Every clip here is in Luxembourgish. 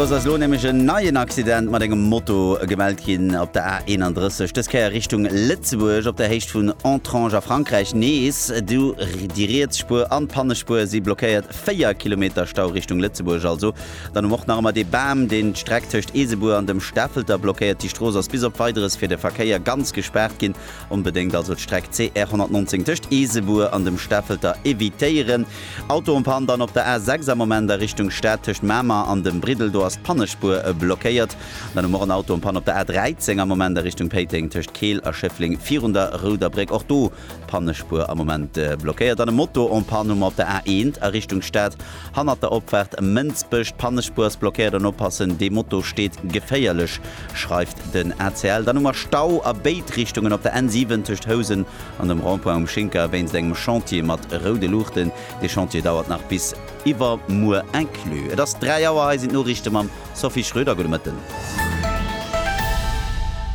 Soss ass elo nämlech en neien Accident mat engem Moto gemellt ginn op der A 31, dës Kéier Richtung Lëtzebuerg op der Héicht vun Entrange a Frankräich nees. Du déi riets Spuer an d'Pannespuer si blockéiert, 4 Kilometer Stau Richtung Lëtzebuerg also. Dann um och nach ëmmer dee Bam, deen d'Streck tëscht Eesebuer an dem Stafelter blockéiert. Déi Strooss ass bis op Weideres fir de Verkéier ganz gespaart ginn Onbedéngt also d'Streck CR 119 tëscht Eesebuer an dem Stafelter evitéieren. Auto en panne dann op der A 6 am Moment a Richtung Stad tëscht Mamer an dem Briddel, do ass d'Pannespuer blockéiert. Dann hu mer och en Auto en panne op der A 13 am Moment a Richtung Péiteng tëscht Keel a Schëffleng virun der Rouder Bréck, och do d'Pannespuer am Moment blockéiert. Dann e Moto en panne hu mer op der A 1 a Richtung Stad. Hannert der Opfaart ëm Mënzbech, d'Pannespuers blockéiert an oppassen, dee Moto steet geféierlech, schreift den ACL. Dann hu mer Stau a béid Richtungen op der N7 tëscht Housen an dem Rond-point um Schinker wéinst engem Chantier mat roude Luuchten. Dee Chantier dauert nach bis iwwermuer inclus. Et ass 3 Auer, hei sinn d'Noriichte mam Sophie Schröder. Gudde Mëtten.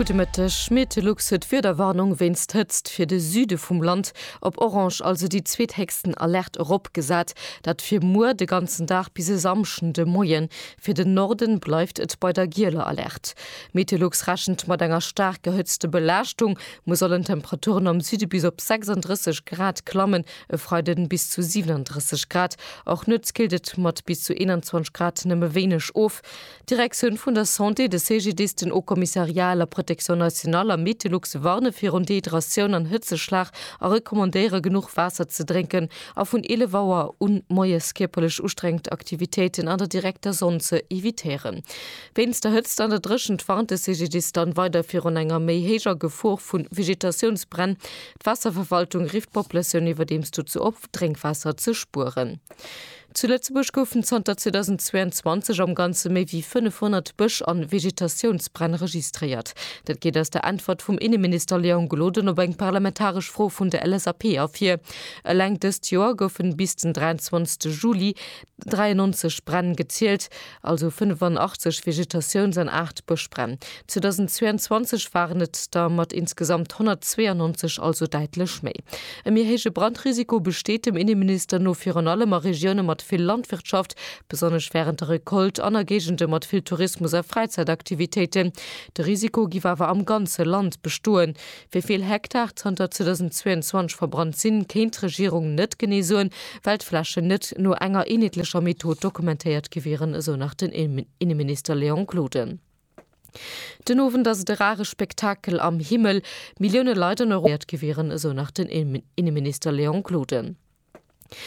Gudde Mëtteg. Metelux huet Wiederwarnung wéinst Hëtzt fir de Süde vum Land. Op Orange also déi zweethéchsten Alerte eropgesat. Dat fir muer de ganzen Dag bis e Samschden de Moien. Fir den Norden bleift et bei der gieler Alerte. Meteolux rechent mat enger staark erhëtzte Belaaschtung. Muer sollen d'Temperaturen am Süde bis op 36 Grad klammen, e Freiden bis zu 37 Grad. Och nuets killt et mat bis zu 21 Grad nëmme wéineg of. D'Direktioun vun der Santé, de CGDIS, den Haut Commissariat à la Protection Nationale a Metelux warne virun Dehydratioun an Hëtzeschlag a recommandéiere genuch Waasser ze drénken a vun 11 Auer u moies kierperlech ustrengend Aktivitéiten an der direkter Sonn ze evitéieren. Wéinst der Hëtzt an der Dréchent warnt de CGDIS dann weider virun enger méi héijer Gefor vu Vegetatiounsbränn. D'Waasserverwaltung rifft d'Populatioun iwwerdeems dozou op, Drénkwaasser ze spueren. Zu Lëtzebuerg goufen zanter 2022 am Ganze méi wéi 500 Bësch an Vegetatiounsbränn registréiert. Dat geet aus der Äntwert vum Inneminister Léon Gloden op eng parlamentaresch Fro vun der LSAP ervir. Eleng dëst Joer goufen bis den 23 Juli 93 Bränn gezielt. also 85 Vegetatiouns an 8 Bëschbränn. 2022 waren et der mat insgesamt 192, also däitlech méi. E méi héije Brandrisiko besteet dem Inneminister no virun allem a Regioune mat vill Landwirtschaft, besonnesch wärend der Recolte, an a Géigende mat vill Tourismus a Fräizäitaktivitéiten. De Risiko giff awer am ganze Land bestoen, Wéi vill Hektar zanter 2022 verbrannt sinn, kéint d'Regierung net genee soen, well d'Flächen net no enger eenheetlecher Method dokumentéiert gi wieren, esou nach den Inneminister Léon Gloden. Den Owend ass et e rare Spektakel am Himmel, Millioune Leit an Europa informéiert gi wieren, esou nach den Inneminister Léon Gloden.